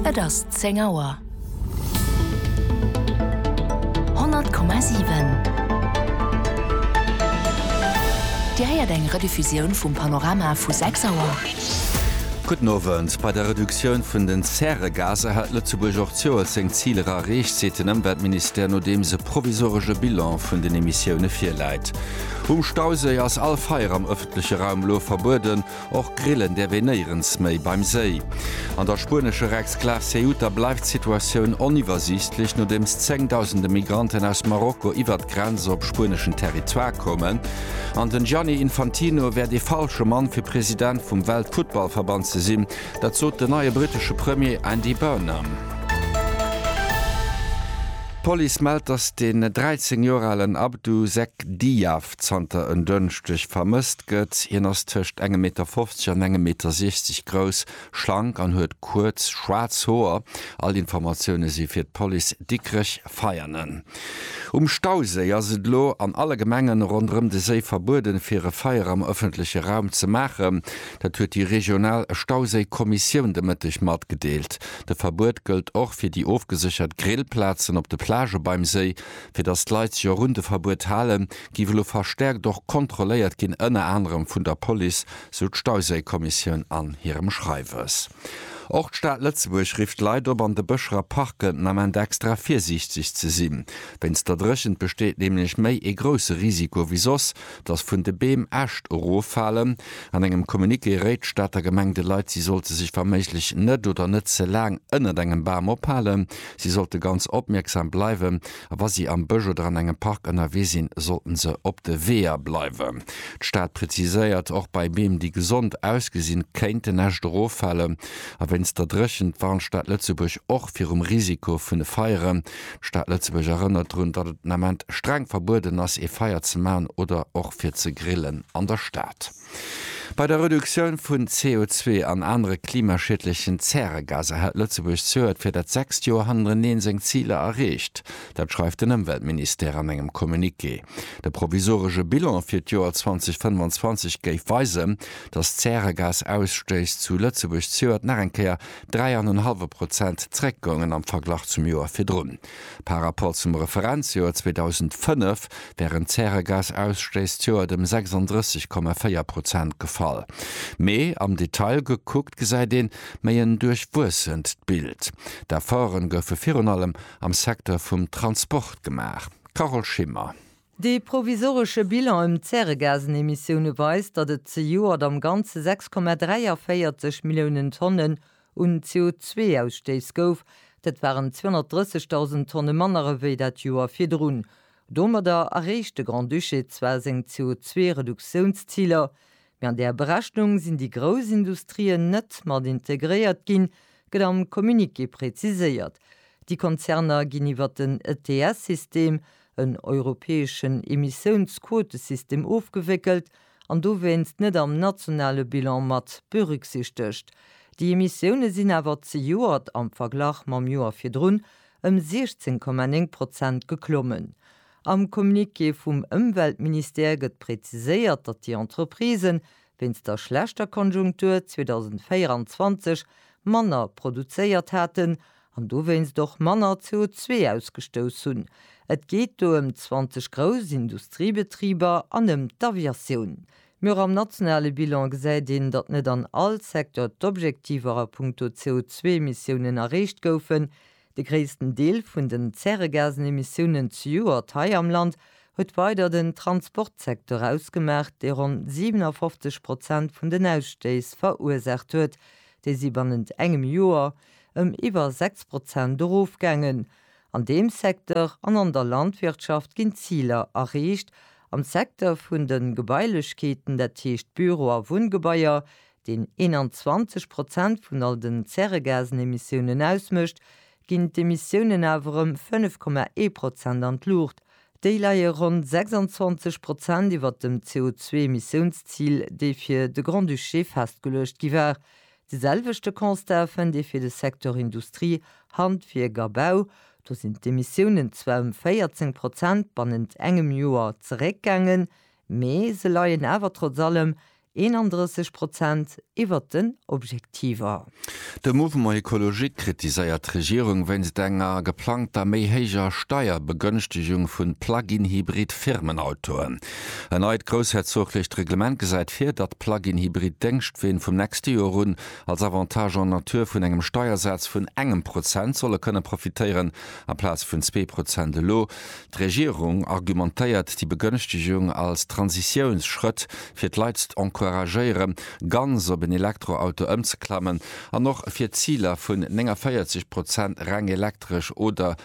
Et ass zéng Auer. 100,7 Dir héiert eng Rediffusioun vum Panorama vu 6 Auer. Gudden Owend. Bei der Reduktioun vun den Zäregaser hat Lëtzebuerg och d'Joer seng Ziler erreecht, seet den Ëmweltministère, nodeems e provisoresche Bilan vun den Emissioune virläit. Um Stauséi ass all Feier am ëffentleche Raum elo verbueden. Och grillen däerf een néierens méi beim Séi. An der spuenescher Exklav Ceuta bleift d'Situatioun oniwwersiichtlech, nodeems zéngdausende Migranten aus Marokko iwwert d'Grenz op spueneschen Territoire koumen. An den Gianni Infantino wäert ee falsche Mann fir President vum Weltfuttballverband ze sinn, dat sot den neie brittesche Premier Andy Burnham. D'Police mellt, datt den 13 Joer alen Abdou Zeck Diaf zanter en Dënschdeg vermësst gëtt. Hien ass tëscht engem Meter 50 an engem Meter 60 grouss, schlank an huet kuerz schwaarz Hoer. All Informatioune si fir d'Police Dikrech Veianen. Um Stauséi ass et elo an alle Gemengen ronderëm de Séi verbueden, fir e Feier am ëffentleche Raum ze maachen. Dat huet déi regional Stauséi-Kommissioun de Mëtteg matgedeelt. De Verbuet gëllt och fir déi ofgeséchert Grillplazen op de Plagë beim Séi. Fir datt d'Leit sech och un de Verbuet halen, géif elo verstäerkt och kontrolléiert ginn, ënner anerem vun der Police, sou d'Stauséikommissioun an hirem Schreiwes. Och d'Stad Lëtzebuerg rifft d'Leit op, an de Bëscher a Parken den Ament extra virsiichteg ze sinn. Wéinst der Dréchent besteet nämlech méi ee grousse Risiko wéi soss, datt vun de Beem Äscht eroffalen. An engem Communiqué réit d'Stater Gemeng de Leit, si sollte sech wa méiglech net oder net ze laang ënnert engem Bam ophalen. Si sollte ganz opmierksam bleiwen a wa si am Bësch oder an engem Park ënnerwee sinn, sollten se op de Weeër bleiwen. D'Stad preziséiert, och bei Beem, déi gesond ausgesinn, kéint en Äscht eroffalen a wéinst der Dréchent warnt d'Stad Lëtzebuerg och virum Risiko vun de Feieren. D'Stad Lëtzebuerg erënnert drun, datt et den Ament streng verbueden ass, ee Feier ze maachen oder och fir ze grillen an der Stad. Bei der Reduktioun vun CO2 an anere klimaschiedlechen Zäregaser hält Lëtzebuerg zöert fir dat sechst Joer hannereneen seng Ziler erreecht. Dat schreift den Ëmweltministère an engem Communiqué. De provisoresche Bilan fir d'Joer 2025 géif weisen, datt d'Zäregasausstëiss zu Lëtzebuerg zöert nach eng Kéier dräi an en hallwe Prozent zeréckgoungen am Verglach zum Joer virdrun. Par Rapport zum Referenzjoer 2005 wären d'Zäregasausstéissjoert ëm 36,4 Prozent gefall. Mee am Detail gekuckt gesäit een méi en duerchwuessent Bild. D'Efforte goufe virun allem am Secteur vum Transport gemaach. Carole Schimmer. Dee provisoresche Bilan ëm d'Zäregasenemissioune weist, datt et zejoert am Ganze 6,43 Milliounen Tonne un CO2-Ausstéiss gouf, dat waren 230.000 Tonne manner ewéi dat Joer virdrun. Domadder erreecht de Grand-Duché zwar seng CO2-Reduktiounsziler, mee an där Berechnung sinn déi grouss Industrien net mat integréiert ginn, gëtt am Communiqué preziséiert. Déi Konzerner ginn iwwer den ETS-System, en europäeschen Emissiounsquotesystem, ofgewéckelt an dowéinst net am nationale Bilan mat berücksichtegt. Déi Emissioune sinn awer zejoert am Verglach mam Joer virdrun ëm 16,9 Prozent geklommen. Am Communiqué vum Ëmweltministère gëtt präziséiert, datt déi Entreprisen wéinst der schlechter Konjunktur 2024 manner produzéiert haten an dowéinst och manner CO2 ausgestouss hunn. Et geet do ëm 20 grouss Industriebetriber an ëm d'Aviatioun. Mee och am nationale Bilan gesäit een, datt net an all Secteur d'Objektiver a puncto CO2-Emissiounen erreecht goufen. De gréissten Deel vun den Zäregasenemissiounen zejoert hei am Land huet weider den Transportsecteur ausgemaach, dee ronn 57 Prozent vun den Ausstéiss verursaacht huet, déi si bannent engem Joer ëm iwwer 6 Prozent erofgaangen. An deem Secteur an an der Landwirtschaft ginn d'Ziler erreecht. Am Secteur vun de Gebailechkeeten, dat heescht Büro a Wunngebaier, deen 21 Prozent vun all den Zäregasenemissiounen ausmécht, ginn d'Emissiounen awer ëm 5,1 Prozent an d'Luucht. Déi leie ronn 26 Prozent iwwer dem CO2-Emissiounszil, dee fir de Grand-Duché festgeluecht gi war. De selwechte Constat fënnt ee fir de Secteur Industrie, Handwierk a Bau. Do sinn d'Emissiounen zwar ëm 14 Prozent bannent engem Joer zeréckgaangen, mee se leien awer trotz allem 31 Prozent iwwert den Objektiver. De Mouvement Ecologique kritiséiert d'Regierung wéinst enger geplangter méi héijer Steierbegënschtegung vun Plug-in-Hybrid-Firmenautoen. En neit groussherzoglecht Reglement gesäit vir, datt d'Plug-in-Hybrid Déngschtween vum nächste Joer un als Avantage en nature vun engem Steiersaz vun engem Prozent solle kënne profitéieren, amplaz vun zwee Prozent elo. D'Regierung argumentéiert déi Begënschtegung als Transitiounsschrëtt, fir d'Leit z'encouragéiere ganz op en Elektroauto ëmzeklammen an och fir d'Ziler vun 49 Prozent reng elektresch oder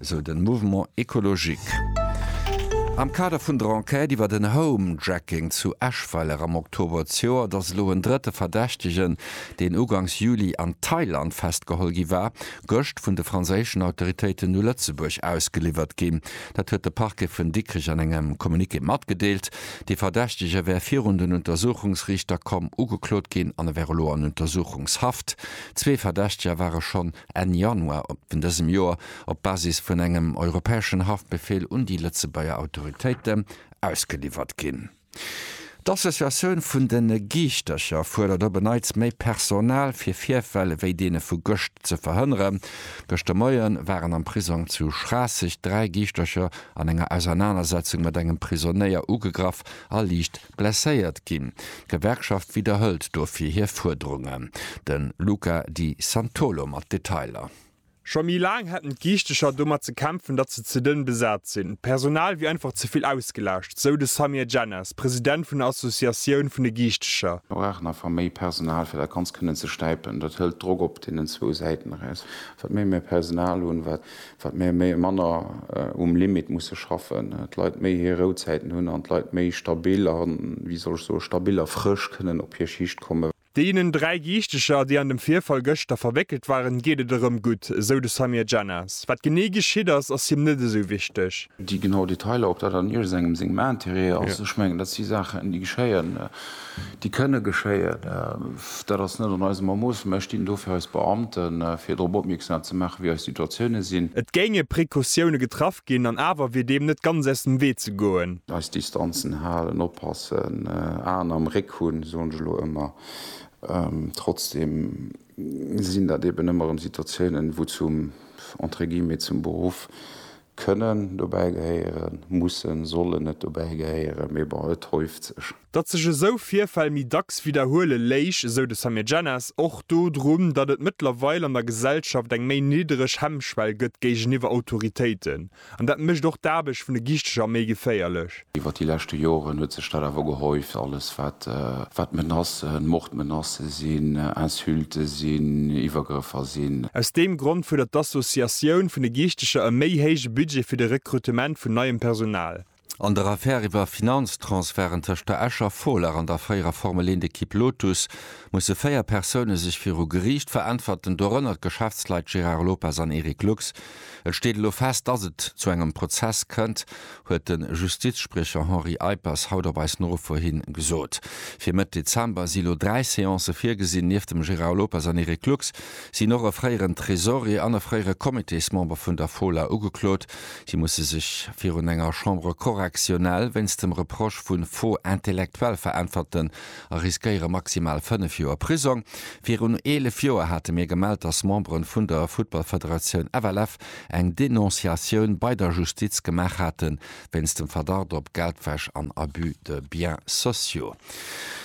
esou den Mouvement Ecologique. Am Kader vun der Enquête iwwer den Home-Jacking zu Eschweiler am Oktober d'Joer, et ass elo en drëtte Verdächtegen, deen ugangs Juli an Thailand festgeholl gi war, gëscht vun de franséischen Autoritéiten u Lëtzebuerg ausgeliwwert ginn. Dat huet de Parquet vun Dikrech an engem Communiqué matgedeelt. De Verdächtege wär virun den Untersuchungsriichter komm, ugeklot ginn an e wär elo an Untersuchungshaft. Zwee Verdächteger ware schonn Enn Januar vun dësem Joer op Basis vun engem europäeschen Haftbefehl un déi Lëtzebuerger Autoritéite ausgeliwwert ginn. D'Associatioun vun de Giichtercher fuerdert op e Neits méi Personal, fir Virfäll wéi deene vu gëscht ze verhënneren. Gëschter Moie waren am Prisong zu Schraasseg dräi Giichtercher an enger Ausernanersetzung mat engem Prisonéier ugegraff a liicht Blesséiert ginn. D'Gewerkschaft widderhëlt dofir hir Fuerderungen. De Luca Di Santolo mat Detailer. Scho méi laang hätten d'Giichtecher domat ze kämpfen, datt se ze dënn besat sinn. D'Personal wier einfach ze vill ausgelaascht, sou de Samir Djennas, President vun der Associatioun vun de Giichtecher. Mir brauchen einfach méi Personal, fir dat Ganzt kënnen ze stäipen. Dat hëlt Drock op deenen zwou Säiten eraus. Wat méi mir Personal hunn, wat Wat mir méi manner um Limit musse schaffen, d'Leit méi hir Rouzäiten hunn an d'Leit méi stabil a wéi soll ech soe stabil a frësch kënnen op hir Schicht kommen. Deenen dräi Giichteger, déi an dem Virfall gëschter verwéckelt waren, geet et erëm gutt, esou de Samir Djennas. Wat genee geschitt ass, ass him net esou wichteg. Déi genau Detailer, ob dat an iergendengem sengem Interêt ass, ech mengen dat si Saachen, déi geschéien. déi kënne geschéien, dat ass net an eisem Ermoosse, mä ech dinn dofir eis Beamten, fir drop opmierksam ze maachen, wéi eis Situatioune sinn. Et géinge Precautioune getraff ginn an awer wier deem net ganz aus dem Wee ze goen. Eis Distanzen halen, oppassen, Aen am Réck hunn, soen ech elo ëmmer. Trotzdeem sinn dat eben ëmmer erëm Situatiounen, wou zum, entre guillemets, zum Beruff Kënnen dobäi gehéieren, mussen, sollen net dobäi gehéieren, mee bon, et häuft sech. Datt sech esou Virfäll méi dacks widderhuele léich, esou de Samir Jenas, och dodrun, datt et mëttlerweil an der Gesellschaft eng méi niddereg Hemmschwell gëtt géigeniwwer Autoritéiten. An dat mécht och d'Aarbecht vun de Giichteger méi geféierlech. Iwwer déi leschte Joren huet sech dat awer gehäuft, alles wat Menacen, Mordmenacen sinn, Insulten sinn, Iwwergrëffer sinn. Aus deem Grond fuerdert d'Associatioun vun de Giichteger e méi héije Budget fir de Rekrutement vun neiem Personal. An der Affär iwwer Finanztransferten tëscht der Escher Folar an der fréierer Formel 1 Ekipp Lotus musse véier Persoune sech viru Geriicht veräntwerten, dorënner d'Geschäftsleit Gérard Lopez an Eric Lux. Et steet elo fest, dass et zu engem Prozess kënnt, huet de Justizspriecher Henri Eippers haut op eis Nofro hi gesot. Fir Mëtt Dezember si elo dräi Seancë virgesinn. Nieft dem Gérard Lopez an Eric Lux sinn och e fréieren Tresorier an e fréiere Comitésmember vun der Fola ugeklot. Si musse sech virun enger Chambre correctionnelle wéinst dem Reproche vu Faux intellectuel veräntwerten, a riskéiere maximal 5 Joer Prisong. Virun 11 Joer hate mir gemellt, dass Membere vun der Futtballfederatioun FLF eng Denonciatioun bei der Justiz gemaach hate wéinst dem Verdacht op Geldwäsch an Abus de biens sociaux.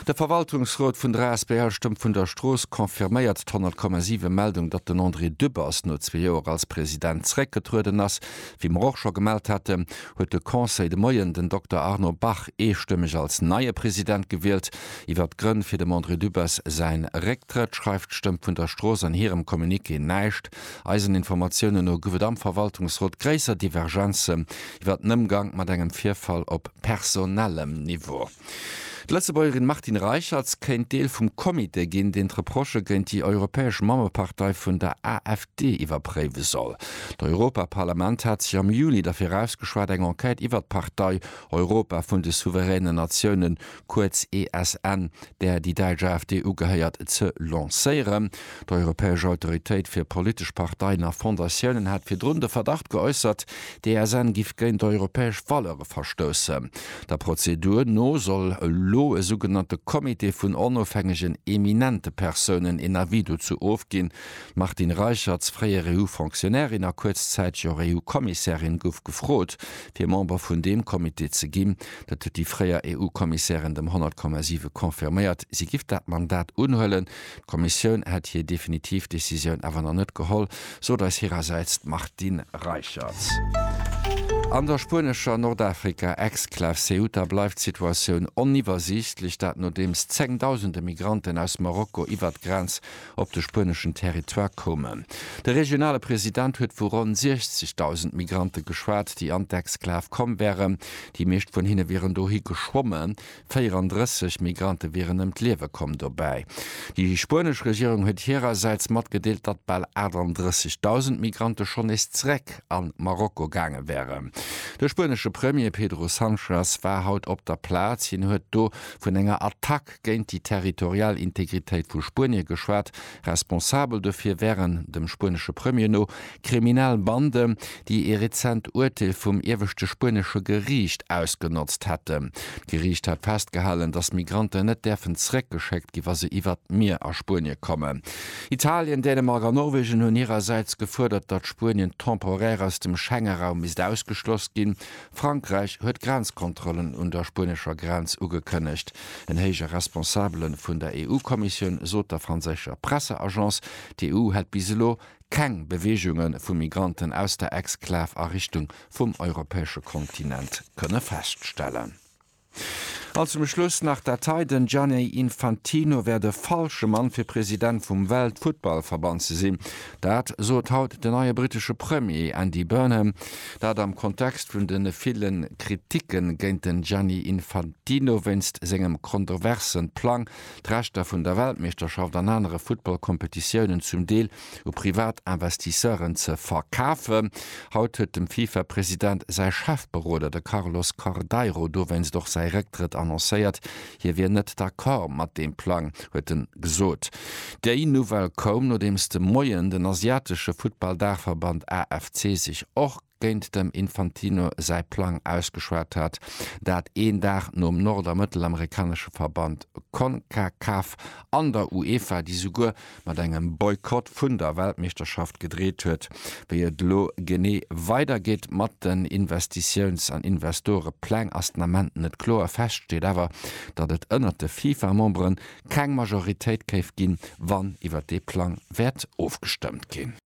De Verwaltungsrot vun der asbl Stëmm vun der Strooss confirméiert d'Honnertkommasive Meldung, datt den André Dübbers no zwee Joer als President zeréckgetrueden ass. Wéi mer och scho gemellt hate, huet de Conseil de Moien den Dokter Arno Bach eestëmmeg als neie President gewielt. Iwwert d'Grënn fir dem André Dübbers säin Récktrëtt schreift d'Stëmm vun der Strooss an hirem Communiqué näischt. Eisen Informatiounen no gouf et am Verwaltungsrot gréisser Divergenzen iwwert den Ëmgank mat engem Virfall op personellem Niveau. D'Lëtzebuergerin Martine Reicherts kéint Deel vum Comité ginn, deen d'Reprochë géint déi europäesch Mammepartei vun der AfD iwwerpréiwe soll. D'Europaparlament hat sech am Juli derfir ausgeschwat, eng Enquête iwwert d'Partei Europa vun de souveränen Natiounen, kuerz ESN, där déi däitsch AfD ugehéiert, ze lancéieren. D'Europäesch Autoritéit fir politesch Parteien a Fondatiounen hat virdrun de Verdacht geäussert, d'ESN giff géint europäesch Valeure verstoussen. Der Prozedur no soll elo e sougenannte Comité vun onofhängegen eminente Persounen een Avis dozou ofginn. D'Martine Reicherts, fréier EU-Fonctionnairin a kuerzzäiteg och EU-Kommissärin, gouf gefrot, fir Member vun deem Comité ze ginn. Dat huet déi fréier EU-Kommissärin dem 100,7 confirméiert. Si giff dat Mandat unhuelen, D'Kommissioun hätt hir definitiv Decisioun awer nach net geholl, sot eis hirersäits d'Martine Reicherts. An der spuenescher Nordafrika-Exklav Ceuta bleift d'Situatioun oniwwersiichtlech, dat nodeems zengdausende Migranten aus Marokko iwwert d'Grenz op de spueneschen Territoire koumen. De regionale President huet vu ronn 60.000 Migrante geschwat, déi an d'Exklav komm wären. Déi meescht vun hinne wieren dohi geschwommen, 34 Migrante wieren ëm d'Liewe komm dobäi. Déi spuenesch Regierung huet hirersäits matgedeelt, datt bal 38.000 Migrante schonn nees zeréck a Marokko gaange wären. De spuenesche Premier Pedro Sanchez war haut op der Plaz. Hien huet do vun enger Attack géint déi territorial Integritéit vu Spuenie geschwat, Responsabel dofir wären, dem spuenesche Premier no, kriminell Banden, déi ee rezent Urteel vum ieweschte spuenesche Geriicht ausgenotzt hätten. D'Geriicht hat festgehalen, datt Migranten net däerfen zeréckgeschéckt ginn, wa se iwwert d'Mier a Spuenie kommen. Italien, Dänemark a Norwegen hunn hirersäits gefuerdert, datt Spuenien temporaire aus dem Schengenraum misst ausgeschloss ginn, Frankräich huet Grenzkontrollen un der spuenescher Grenz ugekënnegt. En héije Responsabele vun der EU-Kommissioun sot der franséischer Presseagence, d'EU hätt bis elo keng Beweegunge vu Migranten aus der Exklav a Richtung vum europäesche Kontinent kënne feststellen. An zum Schluss nach dat hei, Den Gianni Infantino wär de falsche Mann fir President vum Weltfuttballverband ze sinn. Dat sot haut den neie brittesche Premier Andy Burnham. Dat am Kontext vun de ville Kriticke géint den Gianni Infantino wéinst sengem kontroversen Plang d'Rechter vun der Weltmeeschterschaft an anere Futtballkompetitiounen zum Deel u privat Investisseuren ze verkafen. Haut huet dem FIFA-President säi Chefberoder, de Carlos Cordeiro, dowéinst och säi Récktrëtt annoncéiert. Hie wier net d'Accord mat deem Plang, huet en gesot. Déi Nouvelle koum, nodeems de Moien den asiatesche Futtball-Daachverband AFC sech och, géint dem Infantino säi Plang ausgeschwat hat, dat een Dag nom nord a mëttelamerikanesche Verband Concacaf an der UEFA, déi souguer mat engem Boykott vun der Weltmeeschterschaft gedreet huet. Wéi et elo genee weidergeet mat den Investitiouns an Investorepläng ass den Ament net kloer. Fest steet awer, datt et ënnert de FIFA-Memberen keng Majoritéit géif ginn, wann iwwer dee Plang wäert ofgestëmmt ginn.